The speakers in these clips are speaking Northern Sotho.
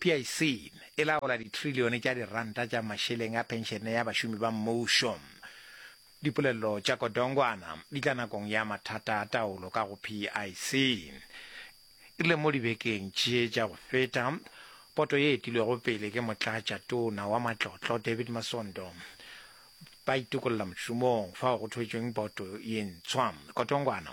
PIC e laola ditrilione tša diranta tša mašeleng a phenšene ya bašomi ba mmušo. Dipolello tša Kodongwana di tla nakong ya mathata a taolo ka go PIC. E rile mo dibekeng tše tša go feta, poto ye etilwego pele ke Motlatša tona wa Matlotlo David Masondo ba itokolla mošomong fao go thwetšweng poto ye ntshwa. Kodongwana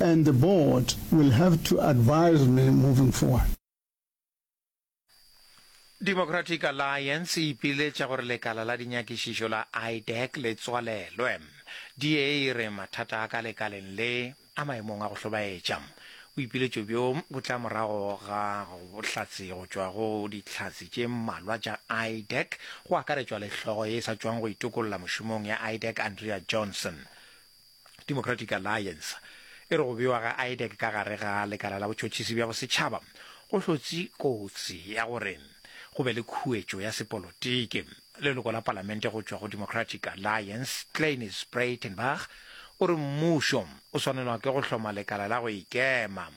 and the board will have to advise me moving forward. Democratic Alliance e ipiletša gore lekala la dinyakišišo la IDEC le tswalelwe. DA e re mathata a ka lekaleng le a maemong a go hlobaetša. Boipiletšo bjo bo tla morago ga bohlatse go tšwa go dihlatse tše mmalwa tša IDEC, go akaretšwa le hlogo ye e sa tšwang go itokolola mošomong ya IDEC Andrea Johnson. Democratic Alliance e re go bewa ga IDEC ka gare ga lekala la botšhotšhisi bja bosetšhaba go hlotse kotsi ya gore go be le khuetšo ya sepolotiki. Leloko la palamente go tšwa go Democratic Alliance, Cleiniss Breytenbach, o re mmušo o swanelwa ke go hloma lekala la go ikema.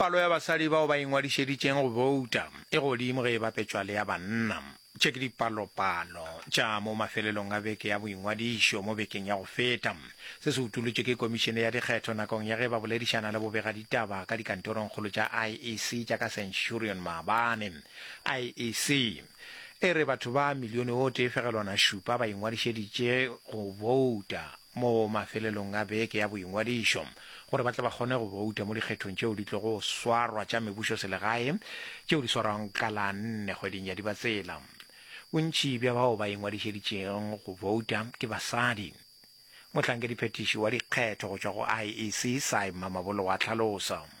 Palo ya basadi bao ba ingwadišeditšeng go bouta e godimo ge e bapetšwa le ya banna. Tše ke dipalopalo tša mo mafelelong a beke ya boingwadišo mo bekeng ya go feta. Se se utolotšwe ke Komišene ya Dikgetho nakong ya ge ba boledišana le bobegaditaba ka dikantorongkgolo tša IEC tša ka Centurion maabane. IEC e re batho ba milione o tee fegelwana šupa ba ingwadišeditše go bouta mo mafelelong a beke ya boingwadišo gore ba tle ba kgone go bouta mo dikgethong tšeo di tlogo swarwa tša mebušoselegae tšeo di swarwang ka la nne kgweding ya Dibatsela. Bontši bja bao ba ingwadišeditšego go bouta ke basadi. Mohlankediphetiši wa dikgetho go tšwa go IEC, Cy Mamabolo wa hlalosa.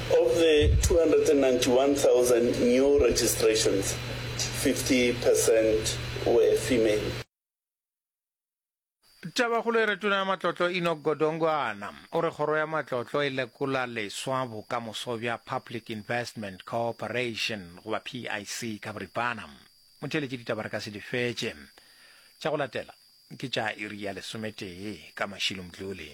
Of the 291,000 new registrations, 50 percent were female. Tabakgolo e re Tona ya Matlotlo Enoch Godongwana o re kgoro ya matlotlo e lekola leswa bokamoso bja Public Investment Cooperation goba PIC ka boripana. Motheeletši ditaba re ka se di fetše. Tša go latela ke tša iri ya lesometee ka mašilo Mdluli.